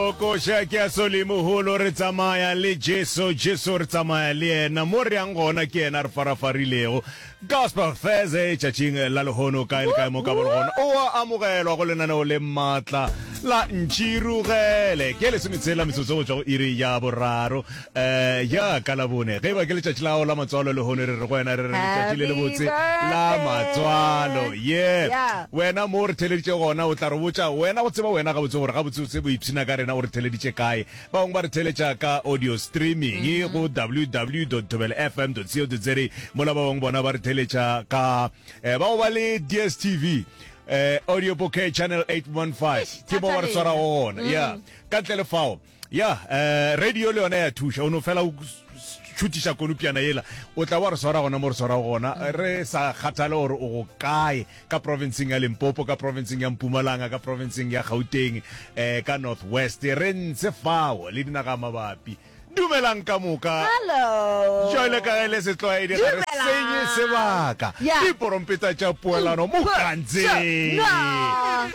Koša ke ya Solimogolo, re tsamaya le Jesu, Jesu re tsamaya le yena, mo re yang gona ke yena a re farafarilego. Gospel Thursday, tšatšing la lehono, kae le kae mo ka ba le gona, o a amogelwa go lenaneo le maatla la Ntširogele. Ke ya lesometshela metsotso go tšwa go iri ya boraro. Ee, ja ka Labone, ge e ba ke letšatši la gago la matswalo, lehono re re go wena, re re letšatši le lebotse la matswalo. Yep. Wena mo o re theleditše gona, o tla re botša, wena go tseba wena gabotse gore gabotsebotse o ipshina ka rena o re theleditše kae. Ba bangwe ba re theletša ka audio streaming go ww thobela fm co za, mola ba bangwe bona ba re theletša ka eh, ba go ba le DSTV eh, audio bouquet channel 815 ke mo ba re swarago gona. Yeah. Ka ntle le fao, Ya, eh, radio le yona ya thuša o no fela o šutiša konopiana yela o tla wa re swara gona mo re swara gona mm. re sa kgathale gore o go kae ka provinceng ya limpopo ka provinceng ya mpumalanga ka provinceng ya gauteng um ka north west re ntse fao le dinaga mabapi dumelang ka moka jale ka ge le setlwaedi ga re senye sebaka diporompeta tša poelano mo kantseng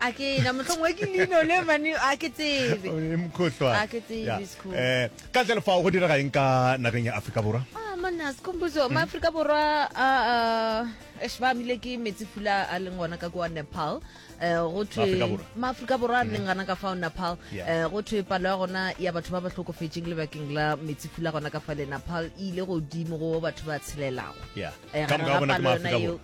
a ke na motlhong wa ke lino le mane a ke tsebe O ne mokhohlwa. A ke tsebe, Yeah. it's cool. Eh, ka ntle le fao go direga eng ka nageng ya aforika borwa Ah, manna sekomposo Mm. maaforika borwa a a esh, ba amile ke metsi pula a leng gona ka kwa nepal um go thwe Maaforika Borwa. Mm. maaforika borwa a leng gana ka fao nepal Yeah. um go thwe palo ya gona ya batho ba ba tlhokofetseng lebakeng la metsi pula gona ka fale nepal e ile godimo go batho ba tshelelago Yeah. Eh, Ka moka ga bona ke Maaforika Borwa.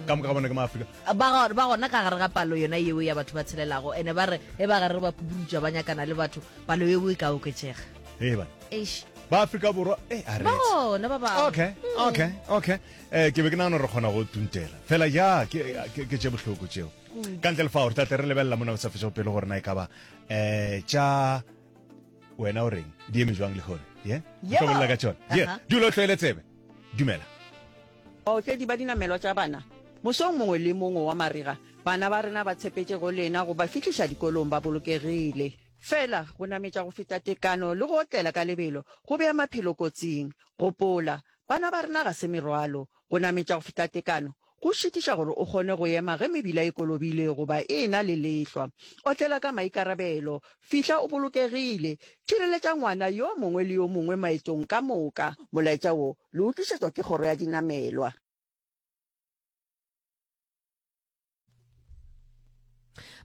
ka moka ga bona ke maaforika Ba, ba gona ka gare ga palo yona yeo ya batho ba tshelelago, ene ba re ge ba gare ba pupurutša ba nyakana le batho, palo yeo e ka oketšega. Ee, bana. Eish. Ba Afrika Borwa, ee, a re. Ba gona ba bangwe. Okay, okay, okay. Eh, ke be ke nagana gore re kgona go tuntela. Fela ja, ke, ke, ke tše bohloko tšeo. Ka ntle le fao, re tla tle re lebelela mona go sa fetšego pele gore na e ka ba, eh, tša, wena o reng, di eme jwang le hone, ye? Yeah? Yebo. Hlobolela ka tšona. Ye, Aha. dula o tlwaele tsebe. Dumela. Baotledi ba dinamelwa tša bana, Mosong mongwe le mongwe wa marega, bana ba rena ba tshepetše go lena go ba fihliša dikolong ba bolokegile. Fela, go nametša go feta tekano le go otlela ka lebelo go bea maphelo kotsing. Gopola, bana ba rena ga se merwalo. Go nametša go feta tekano go šitiša gore o kgone go ema ge mebila e kolobile goba e e-na le lehlwa. Otlela ka maikarabelo. Fihla o bolokegile. Tšireletša ngwana yo mongwe le yo mongwe maetong ka moka. Molaetša wo Le utlušetšwa ke kgoro ya dinamelwa.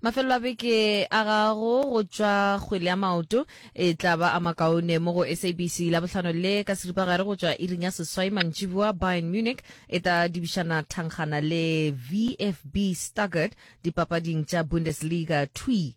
Mafelelo a beke a gago go tšwa kgwele ya maoto e tla ba a makaone mo go SABC Labohlano le ka seripagare go tšwa iring ya seswai mantšiboa. Bayern Munich e tla dibišana thangkgana le VFB Stuttgart dipapading tša Bundesliga thwi.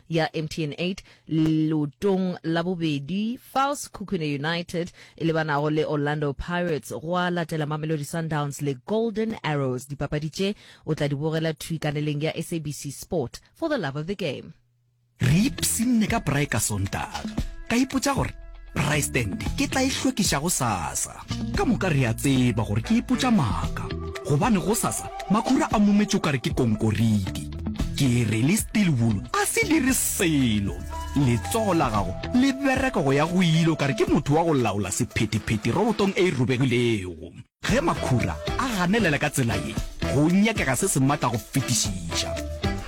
ya MTN 8 leotong la bobedi fals Khukune United e lebanago le Orlando Pirates, gwa latela Mamelodi Sundowns le Golden Arrows. Dipapadi tše o tla di bogela thwi kaneleng ya SABC Sport. For the love of the game. Re ipshinne ka braai ka Sontaga, ka ipotša gore Rystand ke tla e hlwekiša go sasa. Ka moka re a tseba gore ke ipotša maaka gobane go sasa makhura a mumetše o kare ke konkoriti. Ke re le steel wool a se dire selo. Letsogo la gago le bereka go ya go ile o kare ke motho wa go laola sephethephethe robotong e e robegilego. Ge makhura a ganelela ka tsela ye, go nyakega se se matla go fetišiša.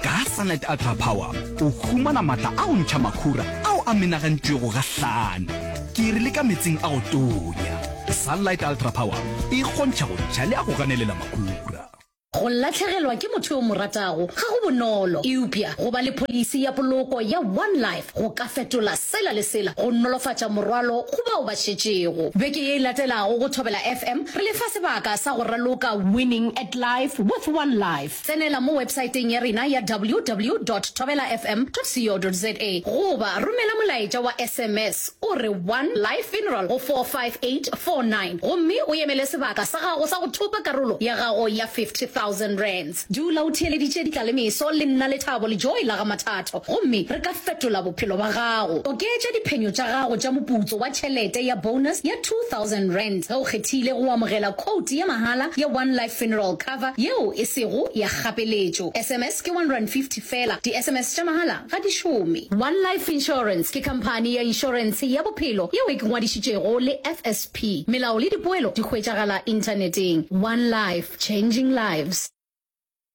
Ka Sunlight Ultra Power o humana matla a go ntšha makhura ao a menagantšwego gahlano ke iri le ka metsing a go tonya. Sunlight Ultra Power e kgontšha go ntšha le a go ganelela makhura. Go lahlegelwa ke motho yo o mo ratago ga go bonolo, eupša go ba le pholisi ya poloko ya One Life go ka fetola sela le sela go nolofatša morwalo go bao ba šetšego. Beke ye e latelago go Thobela FM re le fa sebaka sa go raloka Winning at Life with One Life. Tsenela mo websaeteng ya rena ya ww dot thobelafm dot co dot za goba romela molaetša wa sms O re, One Life Funeral go 45849, gomme o emele sebaka sa gago sa go thopa karolo ya gago ya R50,000. Dula o theeleditše ditlalemeso le nna Lethabo le Joy la ga Mathatho, gomme re ka fetola bophelo bja gago. Oketša diphenyo tša gago tša moputso wa tšhelete ya bonus ya R2,000 ge o kgethile go amogela khoutu ya mahala ya One Life Funeral Cover yeo e sego ya kgapeletšo. Sms ke R150 feela. Di-SMS tša mahala ga di šome. One Life Insurance ke khamphani ya inšorense ya bophelo yeo e ke ngwadišitšego le FSP. Melao le dipoelo di hwetšagala inthaneteng. One Life, Changing Lives.